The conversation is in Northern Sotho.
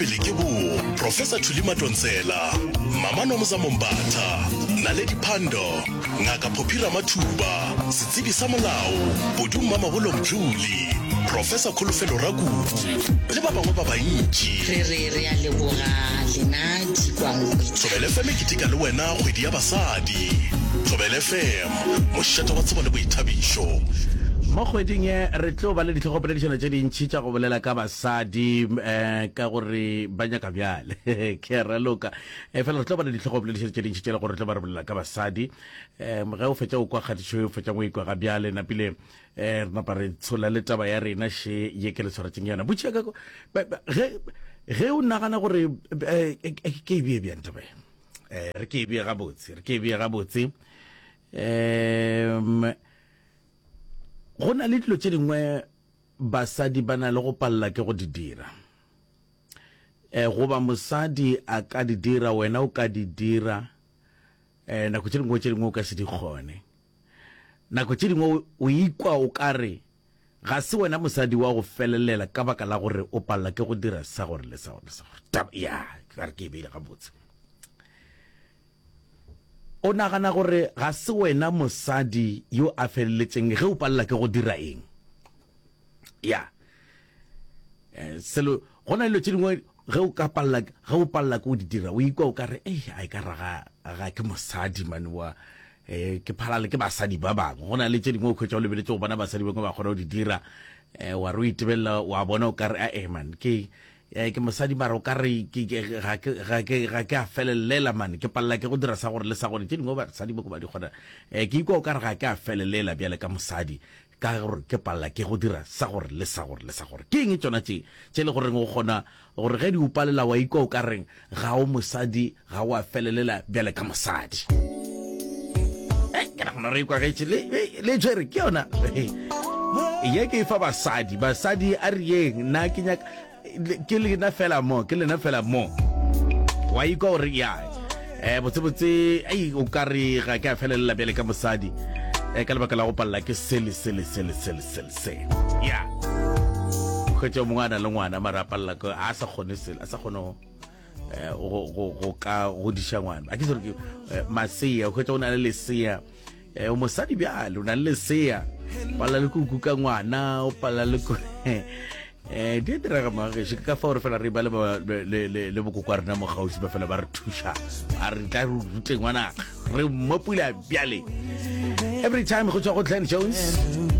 Pele ke bo Professor Thuli Matontsela, Mama Nomsa Mombatha, Naledi Phando, Ngaka Phophi Ramathuba, Setsebi sa Molao, Bodu Mmamabolo Mdluli, Professor Kholofelo Rakubu le ba bangwe ba bantši. Re re re a leboga lena dikwankwe tša. Thobela FM e keteka le wena kgwedi ya basadi. Thobela FM, mošate wa tsebo le boithabišo. Mo kgweding ye re tlo ba le ditlhogopoledišano tše dintši tša go bolela ka. sa di eh, ka gore ba nyaka bjale ke a raloka eh, fela re tlo bana ditlhogo boledišedi tše dintšhi tšela gore re tlo ba re bolela ka basadi um ge o fetša o kwa kgatišo o fetšang o ikwa ga bjale napile um re napa re tshola le taba ya rena še ye ke le tshwaretseng yona botšha ka ge ge o nagana gore eh, eh, eh, ke e bee bjang taba um re ke e bee gabotse re ke e bee gabotse um go na le dilo tse dingwe Basadi ba na le go palela ke go di dira. E, goba mosadi a ka di dira, wena o ka di dira. E, nako tše dingwe tše dingwe o ka se di kgone. Nako tše dingwe o ikwa o ka re ga se wena mosadi wa go felelela ka baka la gore o palela ke go dira sa gore le sa gore le sa gore. Taba ya, ke re ke e beile gabotse. O nagana gore ga se wena mosadi yo a feleletseng ge o palela ke go dira eng? Ya. Eh, selo, go na le dilo tše dingwe ge o ka palela, ge o palela ke go di dira, o ikwa o ka re, ei, a e ka raga ga ke mosadi mane wa eh ke phalale ke basadi ba bangwe go na le tše dingwe o khwetša o lebeletse go bona basadi bangwe ba kgona go di dira eh wa re o itebelela wa bona o ka re a eman ke Ke mosadi mara o ka re ga ke a felelela mane, ke palela ke go dira sa gore le sa gore, tše dingwe basadi boko ba di kgona. Ke ikwa o ka re ga ke a felelela bjale ka mosadi ka gore ke palela ke go dira sa gore le sa gore le sa gore. Ke eng tšona tše tše le goreng o kgona gore ge di o palela wa ikwa o ka reng? Ga o mosadi, ga o a felelela bjale ka mosadi. Hey, ke nagana re ikwagetše le, le tšere ke yona ye ke e fa basadi. Basadi a re yeng, nna ke nyaka ke lena fela mo, ke lena fela mo. Wa ikwa gore ya eh botsebotse ei o ka re ga ke a felelela bjale ka mosadi eh ka lebaka la go palela ke sele sele sele sele sele se ya kgwetša mongwe a na le ngwana mara a palela a sa kgone sele a sa kgone go ka godiša ngwana a ke sere ke eh, masea o kgwetsa o na le lesea eh, o mosadi bjale o na le lesea pala le kuku ka ngwana o pala le um di a diraga magageše ka fa gore fela re ba le bokokwa rena mo gausi ba fela ba re thuša a re tla re rute ngwana re mmopula bjale every time go tswa go glen jones